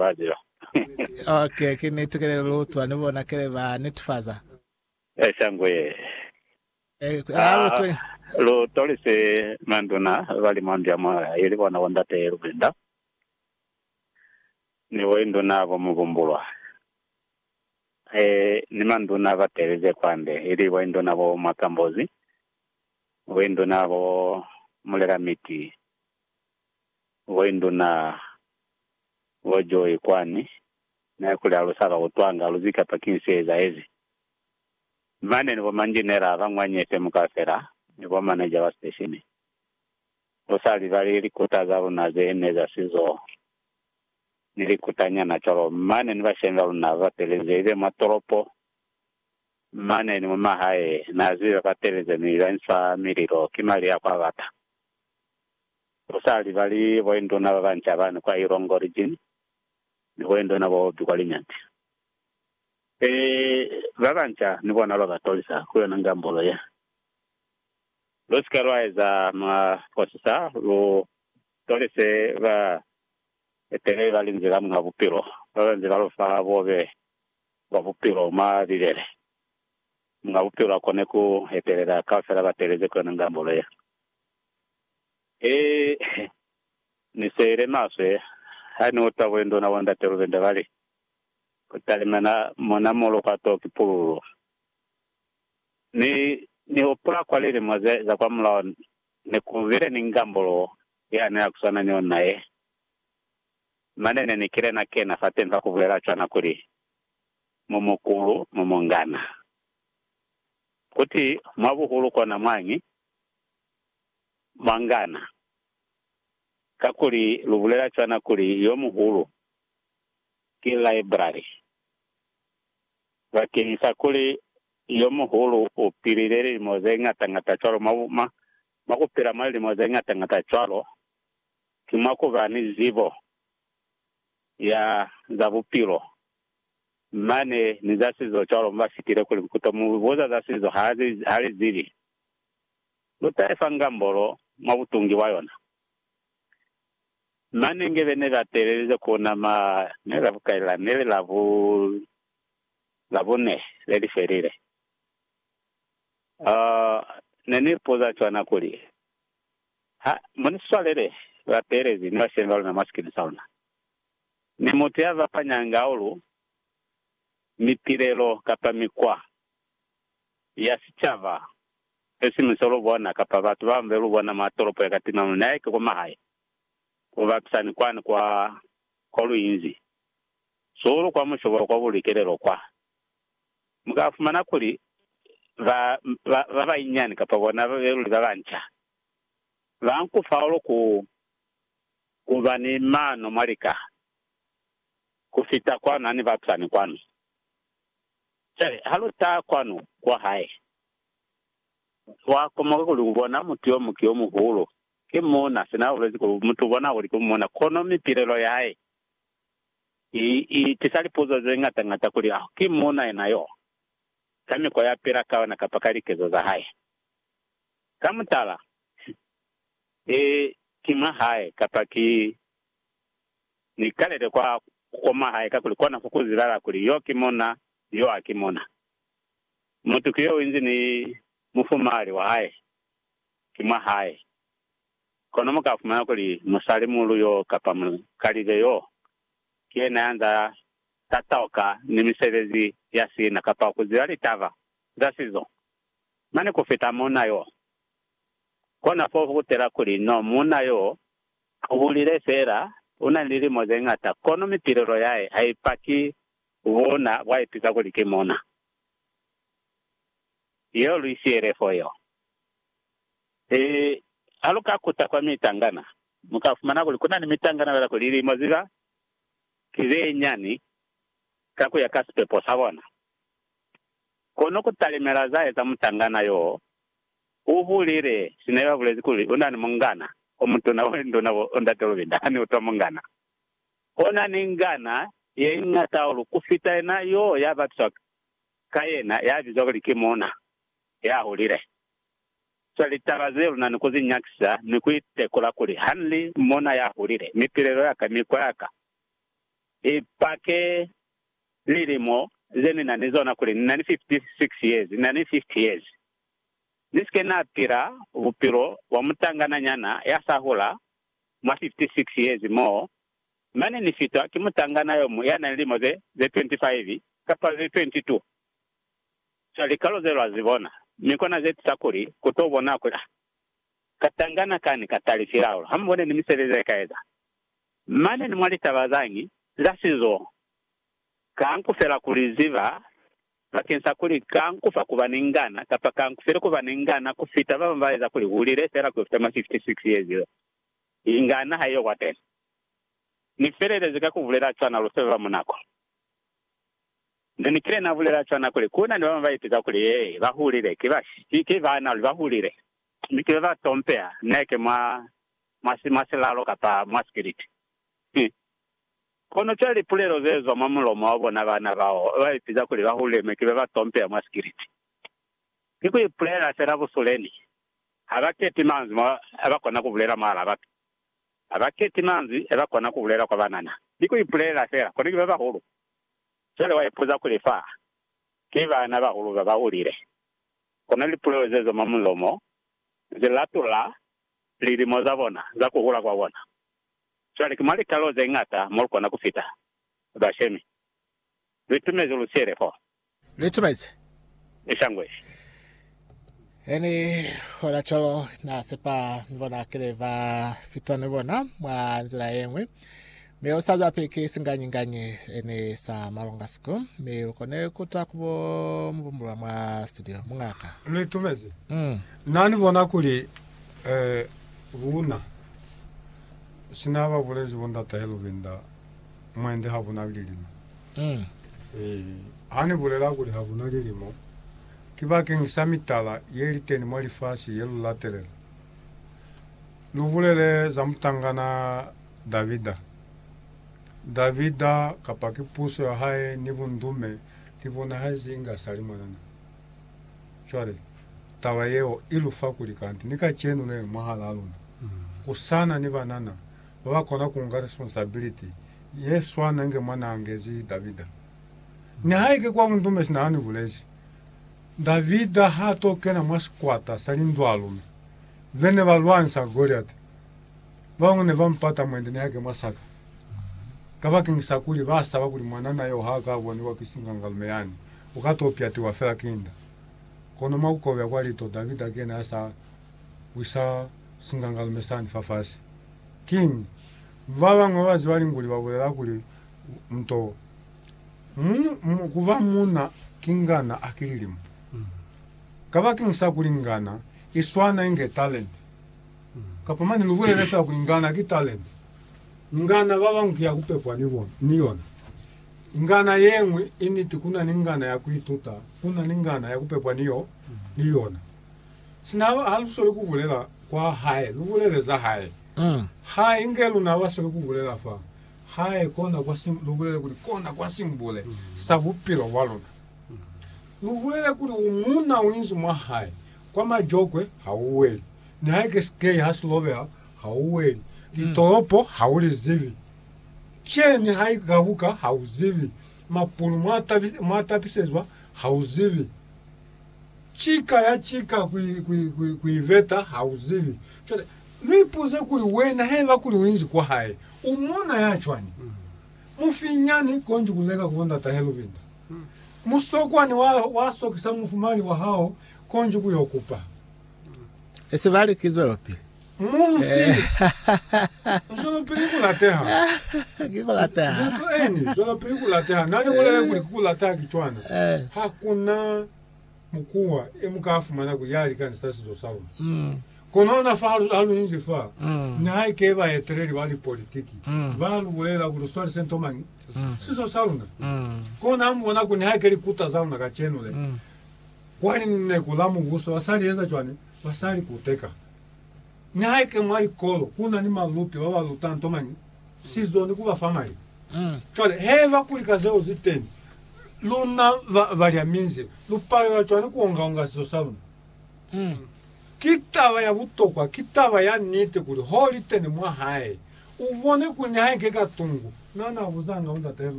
Badio. Ok, ki niti kele lutwa ni bona kele ba netifaza. Eh, shangwe ye. Eh, ku- ah, lutwa ye. Ah, lu tolise manduna ba li mwandu ya moya ili bona bo ndate ye lubinda ni bo induna bo mubumbulwa eh, ni manduna ba telize kwande ili bo induna bo mwakambozi, bo induna bo mulela miti. Why nduna wa joy kwani ne kuli alusaka kutwanga aluzi kapa kiñi se ezahezi mane ni bo manjinera ba ngwanye FM kaufela ni bo manager ba station lusa libali likuta za luna ze ne za sizo ni likuta nyana cwalo mane ni bashemi ba luna ba batelezi ibe mwa tolopo mane ni mu mahae na zibe ba batelezi mi ba insa mililo ki mali ya kwa bata Bo sali bali boinduna ba banca bani kwa Ilongo Region ni boinduna bo bobi kwa Linyanti. E, ba banca ni bona lwa ba tolisa ku yona ngambolo ye. Lu si ke lwa eza maposisa, lu tolise ba eteleli ba Linzwi la Muñ'a Bupilo ba ba nze ba lu fa bobe bwa bupilo mwa Bibele. Muñ'a Bupilo a kone ku etelela kaufela ba teeleze ku yona ngambolo ye. He, Ni seile maswe ha Ni uta bulenduna bo Ndate Lubende ba li, Ku talimena mona mo lupato ki pululu. Ni, Ni hupula kwa lilimo ze, za kwa mulao, ne ku bile ni ngambulu ya nila ku swana ni yona ye. Mane ne ni kile na kena fateni fa ku bulela cwana kuli, Mu mukulu, mu mungana. Kuti, mwa buhulu kona mwañi, mwangana, kakuli lu bulela cwana kuli yo muhulu ki library, bakeñisa kuli yo muhulu u pilile lilimo ze ngata-ngata cwalo. Mwa, mwa, mwa ku pila mwa lilimo ze ngata-ngata cwalo, ki mwa ku ba ni zibo ya za bupilo mane ni za sizo cwalo. Mu ba fitile kuli, Nkuto mu buza za sizo, ha li, ha li zibi. lu taesa ngambolo mwa butungi bwa yona. Manenge be ne ba teelelize ku nama ne la bukai la ne li la bu Labune le li felile, ne ni ipuza cwana kuli, Ha mu ni swalele bateelezi ni bashemi ba luna mwa sikini sa luna, ni mutu ya zapanyanga aulu, mitilelo, kapa mikwa ya sicaba, esiñwi se lu bona, kapa batu ba mbe lu bona mwa tolopo ya ka timamuni, na eke kwa mahae, ku bapisa ni kwani kwa, kwa lu inzi, zuhulu kwa mushobolo kwa bulikelelo kwa. Mu ka fumana kuli ba, ba, ba banyinyani, kapa bona ba be luli ba banca, ba nku fahulu ku, ku ba ni mano mwa lika, ku fita kwanu ha ni bapisa ni kwanu. Cwale ha lu taha kwanu kwa hae, lwa komoka kuli ku bona mutu yo muki yo muhulu. Ki muuna, sina ha bulezi kuli mutu u bona kuli ki muuna, kono mipilelo ya hae i, i tisa lipuzo ze ñata ñata kuli, Aho ki muuna yena yo, ka mikwa ya pila ka yona kapa ka likezo za hae? Ka mutala, ki, ki mwa hae kapa ki? Ni kalele kwa kukoma hae kakuli kona ku kuzilala kuli yo ki mona ni yo haki mona. Mutu ki yo inzi ni mufumahali wa hae ki mwa hae. Kono mu ka fumana kuli musali muulu yo kapa mukalibe yo ki yena ya nza tatauka ni misebezi ya sina kapa ku ziba litaba za sizo mane ku fita mona yo. Kona fo ku kutela kuli no mona yo U hulile feela, u na ni lilimo ze ñata, kono mipilelo ya hae ha i paki buuna bwa ipika kuli ki muuna yo lu isiyele fo yo. He, ha lu ka kuta kwa mitangana, mu ka fumana kuli ku na ni mitangana fela kuli lilimo ziba ki ze nyani ka ku ya ka sipepo sa bona. Kono ku talimela za eza mutangana yo U bulile sina yo abulezi kuli u na ni mungana o mutuna wa linduna bo Ndate Lubinda hane utwa mungana o na ni ngana ye ñata hahulu ku fita yena yo ya bapiswa ka yena ya bizwa kuli ki muuna ya hulile. Zwa litaba ze lu na ni ku zi nyakisa ni ku itekula kuli ha ni li muuna ya hulile, mipilelo ya ka, mikwa ya ka i pake. Lilimo ze ni na ni zona kuli ni na ni 56 years, ni na ni 50 years. Ni si ke na pila bupilo bwa mutangana nyana ya sa hula mwa 56 years moo, mane ni fitwa ki mutangana yo muñwi ya na ni lilimo ze 25 kapa ze 22. Cwale likalo ze lwa zi bona, mi kona ze tisa kuli ku to bonwa kuli, ah, Katangana kani katali silaula hamubone ni misebezi yekaeza. Mane ni mwa litaba zañi za sizo, kanku fela kuli ziba bakeng sa kuli kanku fa kuba ni ngana kapa kanku file kuba ni ngana kufita babañi baeza kuli hulile fela kufita mwa 56 years yo ingana haiyo kwateni. Ni felelezi ka kubulela cwana lufeba munako. Ne ni kile na bulela cwana kuli ku na ni ba bañwi ba ipitsa kuli ye ba hulile ki ba shi, ki baana luli ba hulile, mi ki be ba tompeha neke mwa, mwa si, mwa silalo kapa mwa sipiliti. Hi. Kono cwale lipulelo ze zwa mwa mulomo wa bona baana bao ba ipitsa kuli ba hulile mi ki be ba tompeha mwa sipiliti, ki ku ipulela fela busule ni ha ba kepi manzwi mo ba kona ku bulela mwahal'a batu. Ha ba keti manzwi e ba kona ku bulela kwa banana. Ni ku ipulela fela kuli ki ba bahulu. Cwale wa ipuza kuli fa ki bana bahulu ba ba hulile. Kono lipulelo ze zwa mwa mulomo zi latula lilimo za bona za ku hula kwa bona. Cwale ki mwa litalo ze ñata mo lu kona ku fita bashemi. Lu itumezi lu siele fo. Lu itumezi. Ni sangwezi. He ni hola cwalo, na sepa ni bona kile ba fita ni bona mwa nzila ye ñwi. Mi u sa zwapi ki singanyi-nganyi se ni sa malunga siku, mi lu kone ku ta ku bo mu bumbulula mwa studio. Muñaka. Lu itumezi. Na ni bona kuli, eh, luna, sina ba bulezi bo Ndatahe Lubinda, Mwende hakuna lilimo. Ee, ha ni bulela kuli hakuna lilimo, ki bakeng sa mitala ye li teni mwa lifasi ye lu latelela. Lu bulele za mutangana Davida. Davida, kapa ki puso ya hae ni bundume, li bonahezi inge a sa li mwanana. Cwale, taba yeo i lu fa kuli kanti ni kacenu ne, mwahalaa luna, ku sa na ni banana, ba ba kona ku nga responsibility ye swana inge mwa n'a ngezi Davida. Nihaike kwa bundume sina ha ni bulezi, Davida h'a t'o kena mwa sikwata sa lindwalume ze ne ba lwanisa Goliati. Ba bañwi ne ba mu pata mwende nihaike mwa saka, kabakeng sa kuli ba saba kuli mwanana y'o h'a ka boniwa ki singangalume yani, u ka t'o pyatiwa fela ki nda. Kono mwa ku kobya kwa lito, Davida ki yena ya s'a wisa singangalume sani fafasi. Kiñi? Babañwi babaziba linguli babulela kuli, Nto mu, kuba muuna ki ngana aki lilimo. Kabakeñi sa kuli ngana iswana inge talente. Kapa mane lubulele fela kuli ngana ki talente. Ngana babañwi ki ya kupepwa ni yona. Ngana yeñwi initi kuna ni ngana ya kuituta, kuna ni ngana ya kupepwa ni yona. Sina ha lu sweli ku bulela kwa Hae, lu bulele za Hae. Ha inge luna ba sweli ku bulela fa Hae, kona kwa si, lu bulele kuli, kona kwa simbule sa bupilo bwa luna. Lu bulele kuli, U muuna u inzi mwa Hae. Kwa majokwe ha u weli. Nihaike sikei ha si lobeha, ha u weli. Litolopo ha u li zibi. Kye ni ha i gabuka, ha u zibi. Mapulu mwa tapisezwa, ha u zibi. Cika ya cika ku iveta ha u zibi. Cwale, lu ipuze kuli, Wena, haiba kuli u inzi kwa hae, u muuna ya cwani? Mufinyani, konji ku leka ku bo ndata he lubinda. Musokwani wa, wa sokisa mufumali wa hao, konji ku yo kupa. Esi ba li, Ki zwelopili. Mufi! Zwelopili ku lateha. Ki ku lateha. Buka eni, Zwelopili ku lateha. Na li bulele kuli ki ku lateha ki cwana. Ha ku na. mukuwa e mu ka fumana kuli ya likani sa sizo sa luna. Kono ona fa ha lu inzi fa, nihaike baeteleli ba lipolitiki ba lu bulelela kuli lu swalise nto mañi, sizo sa luna ki ona ha mu bona kuli nihaike likuta za luna kacenu le, kwa Lineku la Mubuso, ba sa li eza cwani? Ba sa li kuteka. Nihaike mwa likolo ku na ni baluti ba ba luta nto mañi, si zoni ku ba fa mali. Cwale, haiba kuli ka zeo zi teni, luna ba, balya minze, lu palela cwani ku onga-onga sizo sa luna? Ki taba ya butokwa, ki taba ya niti kuli ho li teni mwa hae, u bone kuli nihaike ka tungu, na na buzanga bo ndat'e luna.